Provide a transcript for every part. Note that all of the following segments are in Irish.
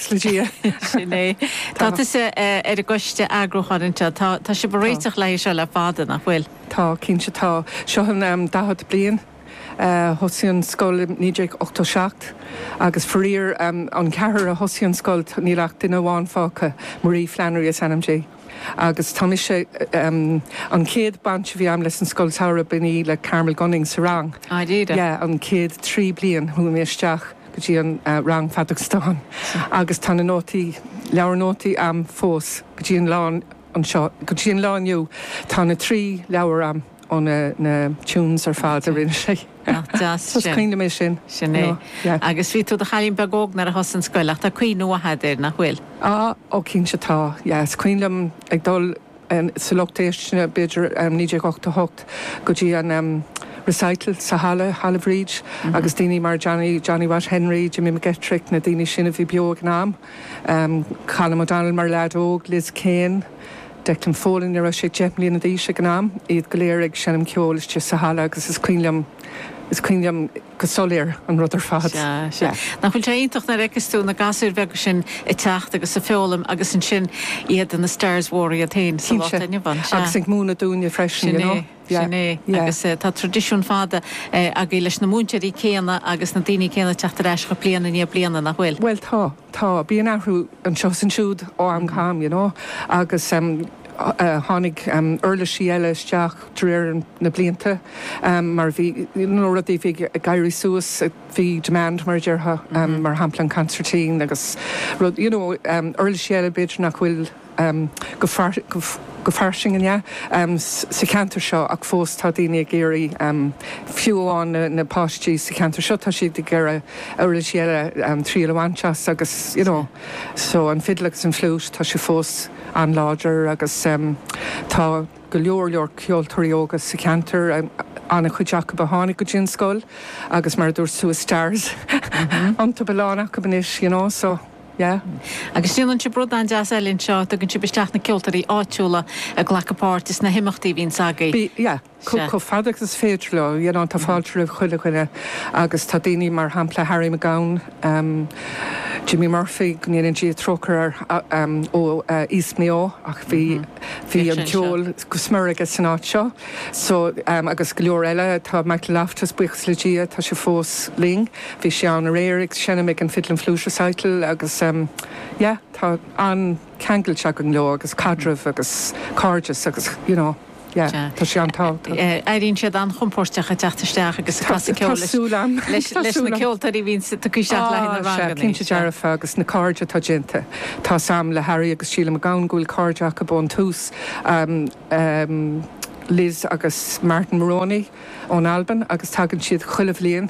Ina dhiaidh sin é. Tá tusa ar an gcoiste eagrúcháin anseo. Tá, tá sibh ag réiteach le haghaidh seo le fada, nach bhfuil? Tá, cinnte tá. Seo an am 40 bliain. Thosaigh an scoil i 1987 agus faraor, an ceathrar a thosaigh an scoil, níl ach duine amháin fágtha, Marie Flannery is ainm di. Agus tá mise, an chéad baint a bhí agam leis an Scoil Samhraidh, b'in í le Carmel Gunning sa rang. Dáiríre? Yeah, an chéad trí bliain, chuaigh mé isteach go dtí an rang Feadóg Stáin agus tá na nótaí, leabhar nótaí a'm fós go dtí an lá, anseo, go dtí an lá inniu, tá na trí leabhar a'm. ó na na tunes ar fad a rinne sé. Nach deas sin. Coinním é sin. Sin é. Yeah. Agus bhí tú i do chailín beag óg nuair a thosaigh an scoil, ach tá cuimhne mhaith agat air, nach bhfuil? Á, ó cinnte tá. Yeah, is cuimhin liom ag dul sa lucht éisteachta, b'fhéidir, 1988, go dtí an ehm recital sa halla, Halla Bhríd, agus daoine mar Johnny, Johnny Watt Henry, Jimmy McGettrick, na daoine sin a bhí beo ag an am, ehm Colm O'Donnell mar leaid óg, Liz Kane. Declan Folan, ní raibh sé deich mbliana d'aois ag an am, iad go léir ag seinm ceoil istigh sa halla agus is cuimhin liom, is cuimhin liom go soiléir an rud ar fad. Sea, sea. Yeah. Nach bhfuil sé iontach nuair a fheiceas tú na gasúir bheaga sin ag teacht agus ag foghlaim agus ansin iad ina stars mhóra iad féin sa lá Cinnte. atá inniu ann. Sea. Agus ag múineadh dúinne freisin, you know. Sin é. Sin é. Agus tá tradisiún fada agaibh leis na múinteoirí céanna agus na daoine céanna ag teacht ar ais chugaibh bliain i ndiaidh bliana, nach bhfuil? Bhuel tá, tá. Bíonn athrú anseo is ansiúd ó am go ham, you know. Agus tháinig uirlisí eile isteach de réir na blianta mar bhí, you know, rudaí a bhí ag éirí suas, bhí demand mar a déarfá, mar shampla an cansairtín agus rud, you know, uirlisí eile b'fhéidir nach bhfuil. go fairsing, ehm, sa cheantar seo ach fós tá daoine ag iarraidh, fiú amháin na páistí sa cheantar seo, tá siad ag iarraidh uirlisí eile triail a bhaint as agus you know so an fiddle agus an flute tá sé fós an-láidir agus tá go leor leor ceoltóirí óga sa cheantar, an-chuid acub a tháinig go dtí an scoil agus mar a dúirt tú is stars iontub a lán acub anois you know so. Yeah. Agus déanann sibh rud an-deas eile anseo, tugann sibh isteach na ceoltóirí áitiúla ag glacadh páirt sna himeachtaí a bhíonns agaibh. Bíonn, yeah. Sea. Chomh fada agus is féidir leo, you know, tá fáilte roimh chuile dhuine agus tá daoine mar shampla Harry McGowan, em, Jimmy Murphy, go ndéana Dia trócaire air, a, em, ó, eh, East Mayo ach bhí, bhí an ceol go smior aige san áit seo. So, em, agus go leor eile, tá Michael Loftus, buíochas le Dia, tá sé fós linn. Bhí sí ann aréir ag seinm ag an Fiddlin' Flute Recital agus em yeah tá an-cheangailt againn leo agus caidreamh agus cairdeas agus you know yeah tá sé an-tábhachtach. Yeah, airíonn siad an-chompóirteach ag teacht isteach agus ag casadh ceoil leis, tá súil agam, tá súil agam, leis na ceoltóirí a bhíonn ag teacht isteach le haghaidh na ranganna. Ó sea, cinnte dearfa agus na cairde atá déanta, tá's a'm le Harry agus Síle MacGowan go bhfuil cairde acub ón tús, em, em Liz agus Martin Moroney ón Albain agus tagann siad chuile bhliain,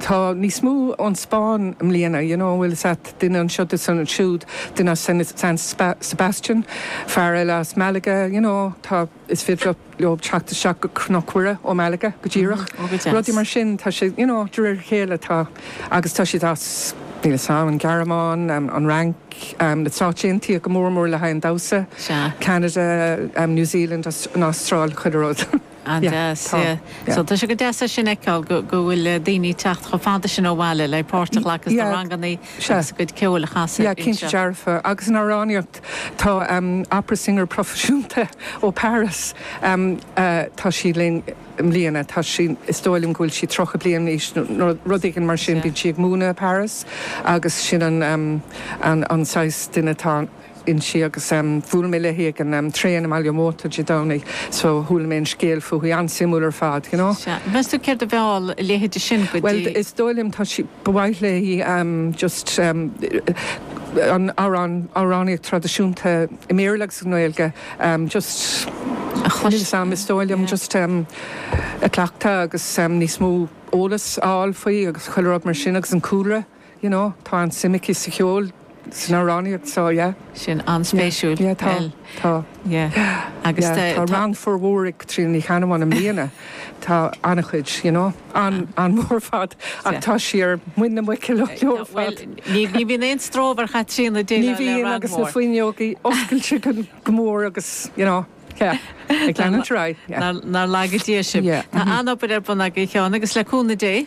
tá níos mó ón Spáinn i mbliana, you know, an bhfuil 's a'at, duine anseo, duine ansiúd, duine as San Sebastian, fear eile as Malaga, you know, tá, is féidir leob teacht isteach go Cnoc Mhuire ó Malaga, go díreach, rudaí mar sin, tá sé, you know, de réir a chéile, tá, agus tá siad as, níl 'fhios a'm, an Ghearmáin, an Fhrainc, na Stáit Aontaithe, go mór mór le haghaidh an damhsa, Ceanada, New Zealand, an Astráil, chuile rud. An-deas, yeah, yeah. So tá sé go deas é sin a fheiceáil, go, go bhfuil eh daoine ag teacht chomh fada sin ó bhaile le páirt a ghlacadh sna Yeah, ranganna sea. agus a gcuid ceoil a chasadh Yeah, cinnte anseo. dearfa. Agus an amhránaíocht, tá ehm opera singer proifisiúnta ó Paris ehm eh tá sí linn i mbliana, tá sí, is dóigh liom go bhfuil sí tríocha bliain d'aois nó nó rud éigin mar sin, bíonn sí ag múineadh i bParis agus sin an ehm an an saghas duine atá, inti agus bhuail mé léi ag an traein i mBaile an Mhóta Dé Domhnaigh so chuala mé an scéal fúithi, an-suimiúil ar fad, you know. Sea. Meas tú céard a mheall a leithéide sin go Bhuel, dtí. is dóigh liom, tá sí, ba mhaith léi just an amhrán, amhránaíocht traidisiúnta i mBéarla agus i nGaeilge just, A chlos. níl 's am, is dóigh liom Yeah. just a chleachtadh agus níos mó eolas a fháil faoi agus chuile rud mar sin agus an cúlra. you know tá an-suim aici sa cheol, san amhránaíocht so yeah. Sin an-spéisiúil. Yeah, tá, tá. Yeah, agus tá rang fíormhór ag Caitríona Ní Cheannabháin i mbliana, tá an-chuid, you know, an-mhór ar fad ach tá sí ar muin na muice leo ar fad. Bhuel, ní bhíonn aon stró ar Chaitríona déileáil le rang mór. Ní bhíonn agus na fuinneogaí oscailte go mór agus you know, yeah, ag leanúint ar aghaidh. Nár laga Dia sibh. Tá an-obair ar bun agaibh Sheáin agus le cúnamh Dé,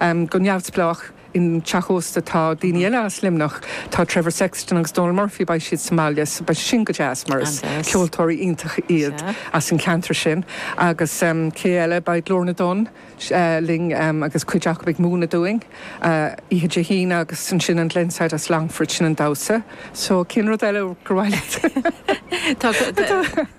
Go neamhspleách, i dteach ósta tá daoine eile as Luimneach, tá Trevor Sexton agus Donal Murphy, beidh siad sa mbaile, so beidh sin go deas mar is ceoltóirí iontacha iad as an cheantar sin. Agus cé eile, beidh Glór na dTonn linn agus cuid acu ag múineadh dúinn oíche Dé hAoine agus ansin an Glenside as Longfort, sin an damhsa. So, cén rud eile gur mhaith leat a.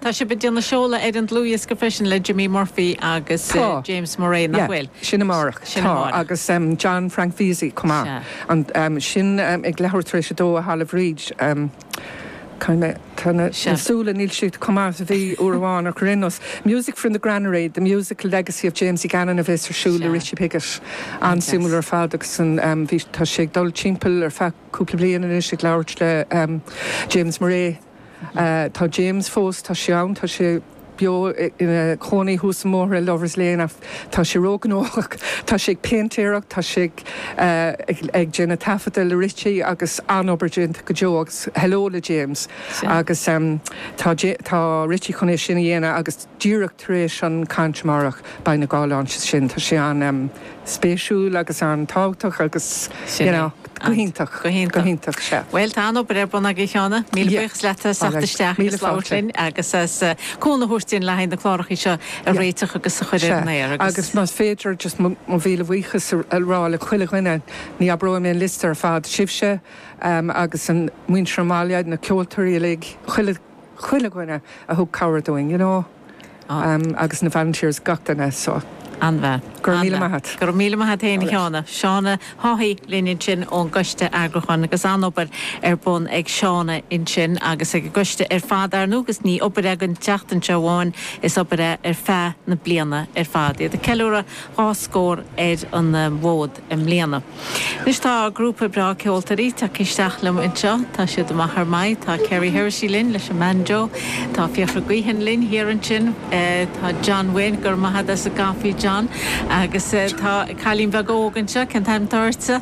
Tá sibh ag déanamh seoladh ar an dlúthdhiosca freisin le Jimmy Murphy agus James Murray, nach bhfuil? Yeah, sin amárach. Sin amárach. Tá, agus John Frank Vesey chomh maith. Sea. Sin ag leathuair tar éis a dó i Halla Bhríde. Caithfidh mé, tá na súile, níl siad chomh maith is a bhí uair amháin ach ar aon nós, Music from the Granary, the musical legacy of Jamesie Gannon a bheas ar siúl le Richie Piggott. An-suimiúil ar fad agus tá sé ag dul timpeall ar feadh. cúpla bliain anois ag labhairt le James Murray. Tá James fós, tá sé ann, tá sé beo ina chónaí thuas an mbóthar i Lovers Lane ach tá sé ró-ghnóthach, tá sé ag péintéireacht, tá sé ag déanamh taifeadta le Richie agus an-obair déanta go deo agus hello le James agus tá tá Richie chun é sin a dhéanamh agus díreach tar éis an chaint amárach beidh na dhá launch sin, tá sé an-. spéisiúil agus an-tábhachtach agus you know, go hiontach, go hiontach, sea. Bhuel, tá an-obair ar bun agaibh a Sheána, míle buíochas leat as teacht isteach agus labhairt linn agus as cúnamh a thabhairt dúinn le haghaidh na clárachaí seo a réiteach agus a chur ar an aer. Agus más féidir just mo mhíle bhuíochas a rá le chuile dhuine, ní abróidh mé an liosta ar fad, sibhse agus muintir an bhaile, na ceoltóirí uilig, chuile chuile dhuine a thug cabhair dúinn, you know, agus na volunteers, gach duine, so go raibh míle maith agat. Go raibh míle maith agat féin, a Sheána. Seána Haughey linn ansin ón gCoiste Eagrúcháin agus an-obair ar bun ag Seána ansin agus ag an gCoiste ar fad, ar ndóigh is ní obair é don tseachtain seo amháin, is obair é ar feadh na bliana ar fad. Iad ag ceiliúradh dhá scór ar an bhfód. i mbliana. Anois tá grúpa breá ceoltóirí tagtha isteach liom anseo. Tá siad amach ar maith. Tá Kerry Hersey linn leis an mbanjo. Tá Fiachra Guihen linn thiar ansin. Tá John Wynne, go raibh maith agat as an gcaifí John. Agus tá cailín beag óg anseo, cén t-ainm atá uirthi?